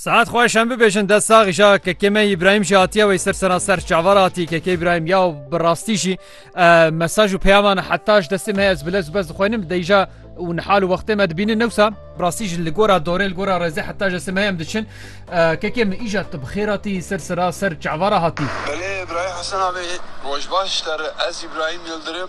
Saet xwe şem bibêjin dest sax îşa kekê me İbrahim jî hatiye wê ser sena ser çavar hatî kekê İbrahim ya bi rastî jî mesaj û peyaman heta ji destê me ez bilez bez dixwenim deyja û nihal û wextê me dibînin newsa rastî jî li gora dorê li gora rezê heta ji destê me em diçin kekê min îja tu bi xêr hatî ser sera ser çavara hatî. Belê İbrahim Hesen abê roj baş te re ez İbrahim Yildirim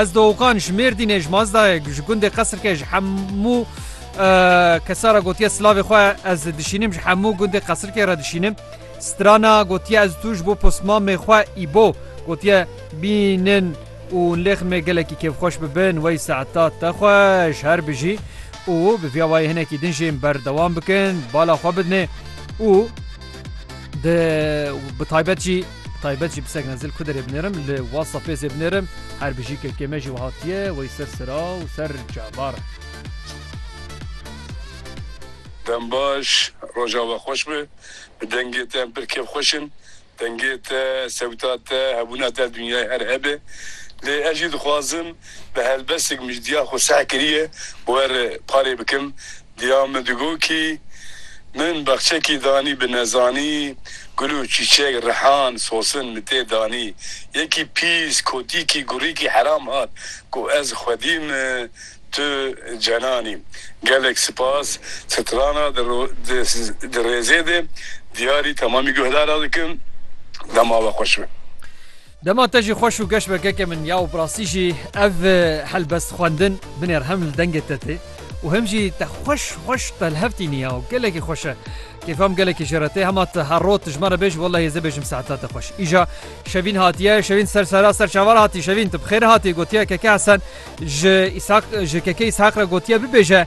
Ez Doxan ji Mêrdînê ji Mazdayê ji gundê Qesirkê ji hemû kesa re gotiye silavê xwe ez dişînim ji hemû gundê Qesirkê re dişînim. Strana gotiye ez tu ji bo postmamê xwe îbo gotiye bînin û lêxmê gelekî kêfxweş bibin wey saeta te xwe ji her bijî û bi vîya wayê hinekî din jê berdewam bikin bala xwe bidinê û di bi taybet jî Taybet jî pisegna zil kuderê binêrim li whatsappê zê binêrim her bijî kekê me jî wiha tiye wey ser sira û ser cavar. Dem baş, roja we xweş be. Bi dengê te em pir kêf xweş in. Dengê te, sewta te, hebûna te dinyayê her hebe. Lê ez jî dixwazim bi helbestêk mijdiya xwe seh kirîye û erê parê bikim. Diya min digot kî min bexçekî danî bi nezanî gul û çîçek rihan sosin min tê danî. Yekî pîs kotîkî gurîkî heram hat ku ez xwedî min tu cenanî. Gelek sipas strana di rêzê de diyarî temamî guhdara dikim. Dema we xweş be. Dema te jî xweş û geş be keke min ya û bi rastî jî ev helbest xwendin binêr hem li dengê te tê û hem jî te xweş xweş telhevtînî ya û gelekî xweş e. Kêfa min gelekî jê re tê hema tu her roj tu ji me re bêj wellehî ez ê bêjim saeta te xweş. Îja Şevîn hatiye Şevîn ser sera ser çavan hatî Şevîn tu bi xêr hatî gotiye keke Hesen ji Îshak ji keke Îshak re gotiye bibêje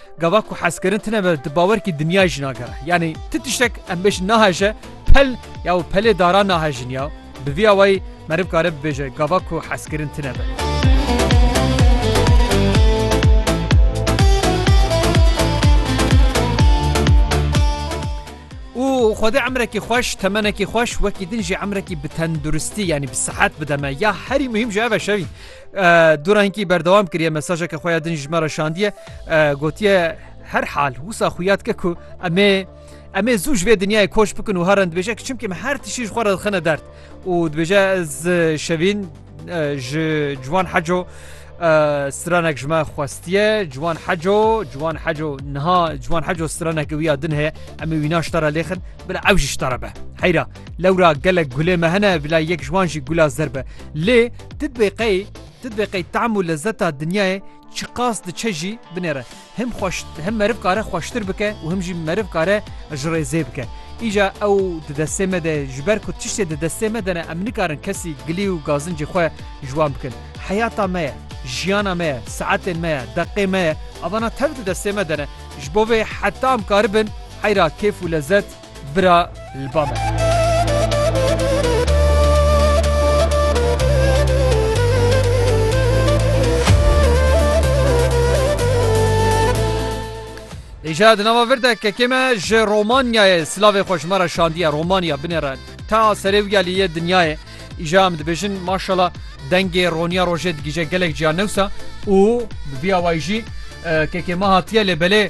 Gava ku hezkirin tine ve di bawerkî dinyayê jî nagere. Yanî ti tiştek em bêjin naheje, pel ya û pelê daran nahejin ya. Bi vî awayî meriv kare bibêje gava ku hezkirin tine ve. Û Xwedê emrekî xweş, temenekî xweş, wekî din jî emrekî bi tenduristî yanî bi sihet bide me. Ya herî muhîm jî ev e şevî. Dora hinkî berdewam kiriye mesajeke xwe ya din ji me re şandiye gotiye her hal wisa xuyat ke ku emê em ê zû ji vê dinyayê koç bikin û herin dibêje ki çimkî me her tişî ji xwe re dixine dert û dibêje ez şevîn ji ciwan heco stranek ji me xwestiye ciwan heco ciwan heco niha ciwan heco straneke wî ya din heye em ê wî naştara lêxin bila ew ji ji te re be heyra Lewra gelek gulê me hene bila yek ji wan jî gula zer be. Lê ti dibê qey ti dibê qey team û lezeta dinyayê çiqas diçe jî binêre. Him xweş him meriv kare xweştir bike û him jî meriv kare ji rê zê bike. Îja ew di destê me de ji ber ku tiştê di destê me de ne em nikarin kesî gilî û gazincê xwe ji wan bikin. Heyata me ye, jiyana me ye, saetên me ye, deqê me ye. Avana tev di destê me de ne. Ji bo vê heta em karibin heyra kêf û lezet, Bira li ba me. Îşeya di nava vir de kekê me ji Romanyayê silavê xwe ji me re şandiye Romanya binê re ta serê wiya lê yê dinyayê îşeya em dibêjin maşala dengê roniya rojê digije gelek ciya newsa û bi vîya wayî jî kekê me hatiye lê belê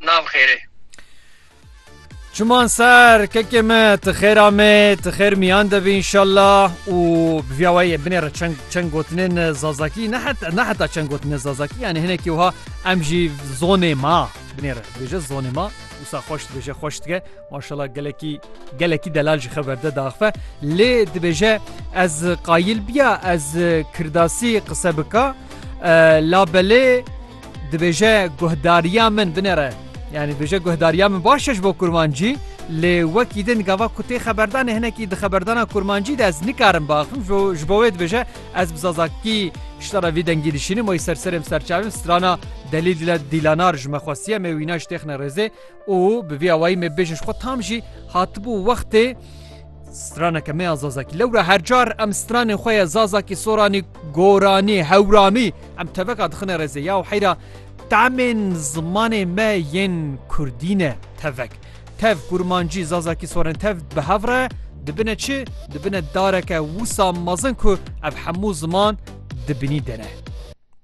nav xêrê. Çiman ser kekê me ti xêra me ti xêr miyan de bî inşallah û bi vîya wayî em binêre çend çend gotinên zazakî ne heta ne heta çend gotinên zazakî yanî hinekî wiha em jî zonê ma binêre bêje zonê ma wisa xweş dibêje xweş dike maşallah gelekî gelekî delal ji xeber de daxife lê dibêje ez qayîl biya ez kirdasî qise bika labelê Dibêje guhdariya min binêre. Yanî dibêje guhdariya min baş e ji bo kurmancî lê wekî din gava ku tê xeberdanê hinekî di xeberdana kurmancî de ez nikarim biaxivim ji bo wê dibêje ez bi zazakî şita re vî dengî dişînim wê ser serê min serçavê min strana delîl dîlanar ji me xwestiye me wîna ji têxine rêzê Û bi vî awayî me bêje ji xwe tam jî hatibû wextê straneke me ya Zazakî. Lewra her car em stranên xwe ya Zazakî, Soranî, Goranî, Hewramî em teveka dixine rêzê ya û heyra temên zimanê me yên Kurdî ne tevek. Tev Kurmancî, Zazakî, Soranî tev bi hev re dibine çi? Dibine dareke wisa mezin ku ev hemû ziman di binî de ne.